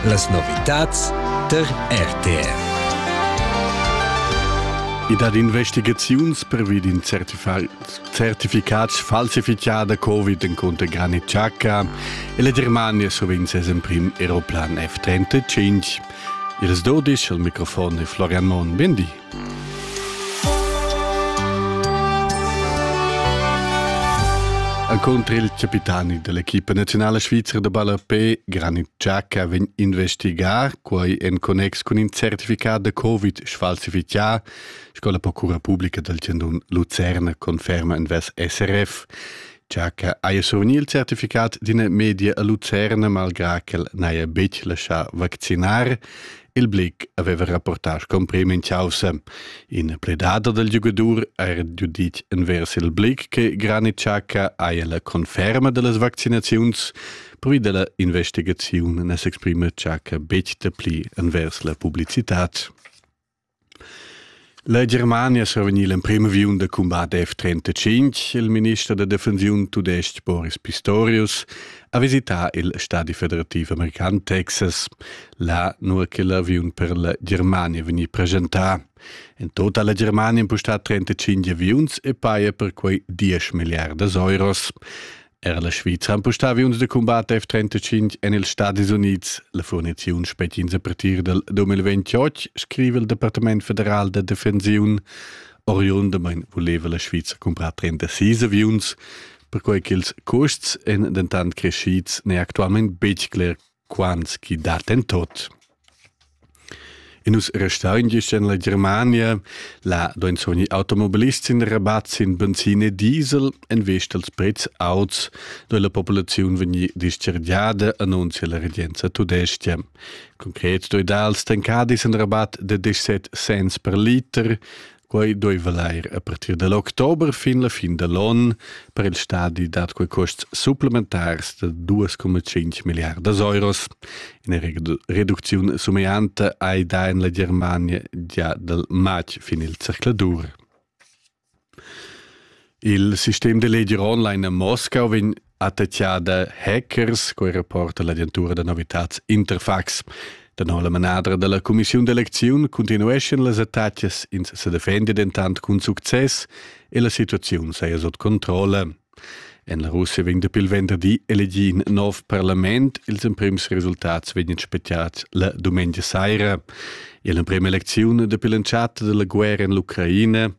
Las novitads tar RTR. I dat investigaziuns pervi d'in certificat falsifichà da Covid encunter Granit Xhaka e la Germania survegn ses emprim aeroplan F-35. Ils dudisch al microfon è Florian Mohn. Bindi. Encunter il capitani dell'equipa nazionale svizera da ballapé, Granit Xhaka, vegn investigar quei en connex cun in certificat da Covid sfalsifichà, sco la Procura Publica del Tendun Lucerna conferma in ves SRF. Xhaka haja survegni il certificat d'ina media a Lucerna malgrà ch'el n'haja betg laschà vaccinar Il Blick aveva rapportà scumprì min chaussa. In pledader del giugadur era giuditg envers il Blick che Granit Xhaka haja la conferma dellas vaccinaziuns, pervi della investigaziun ne s'exprima Xhaka betg dapli envers la publicitad. La Germania sa vegnir l'emprim aviun da cumbat F-35. Il minister da defensiun tudestg Boris Pistorius ha visità il stadi federativ american Texas, là nua che l'aviun per la Germania vegnì presentà. In total ha la Germania impustà 35 aviuns e paja per quei 10 miliardas euros. Era la Svizra ha empustà uns da cumbat F-35 en ils Stadis Unids. La furniziun spetgins a partir del 2028, scrive il Departament federal de defensiun. Oriundamain voleva la Svizra comprar 36 aviuns, perquai ch'ils custs èn dentant crescids n'è actualment betg cler quants chi dat en tot. E nus restain gist en la Germania, la do insomni automobilist sin Rabat sin benzin e diesel en vista als prezs auts do la populaziun vegni discergiada annunzia la regenza tudestia. Concret do dals tancadis en Rabat de 17 cents per liter, Quei dueva leir a partir dell october fin la fin dell onn per il stadi dat quei custs supplementars da 2,5 milliardas euros. Ina reducziun somianta ei da in la Germania gia dal matg fin il zercladur. Il sistem da leger online a Moscau vegn attacchà da hackers, quei reporta l'agentura da novitats Interfax. Da no la manadra dalla cumissiun d'elecziun continueschan las attacas, ins se defende dentant cun success e la situaziun saja sot controlle. En la Russia vegn dapi il venderdi elegì in nov parlament. Ils emprims resultats vegnan speziati la dumengia saira. E l'emprima eleziun dapi l'entschatta della guerra en l'Ucraina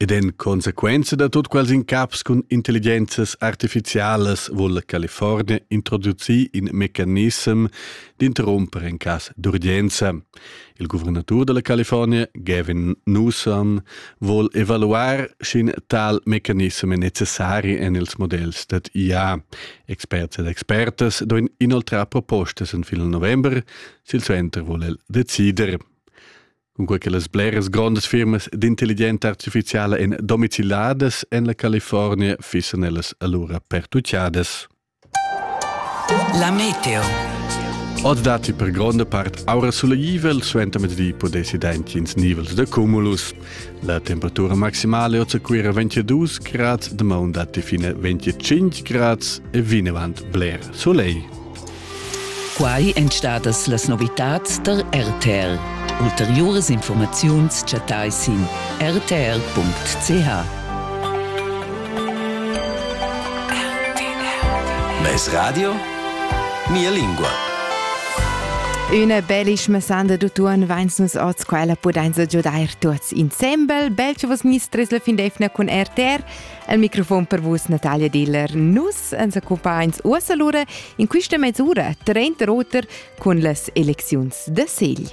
Ed en consequenza da tut quels incaps cun intelligenzas artificialas vul la California introducir in mecanissem d'interrumper en cas d'urgenza. Il guvernatur della California, Gavin Newsom, vuol evaluar sch'in tal mecanism è necessari en ils modells dad IA. Experts ed expertas doen inoltrar propostas en fil november, silsuenter vuol el decider. Cunquei che las bleras grondas firmas d'intelligenza artificiala ein domiciliadas en la California, fissan ellas allura pertucciadas. La meteo. Oz datti per gronda part aura sulegivell, suentermezdi pudessi dentgins nivels de cumulus. La temperatura maximale oz a Cuira 22 grad, de maun datti fine 25 grad e vinavant bler soleil. Quai èn stadas las novitads tar RTL. Ulteriuras informaziuns chattai sin rtl.ch. Mes radio? Mia lingua. Üna bellischma sanda d'utuon vains nus oz quella pudainsa giudair tuots insembel. Bel cha vos mistris la fin d'eifna cun RTR El microfon per vus, Natalia Diller. Nus ens accompagns uossa lura in quista mezz'ura, 30 oter, con las elecziuns de Segl.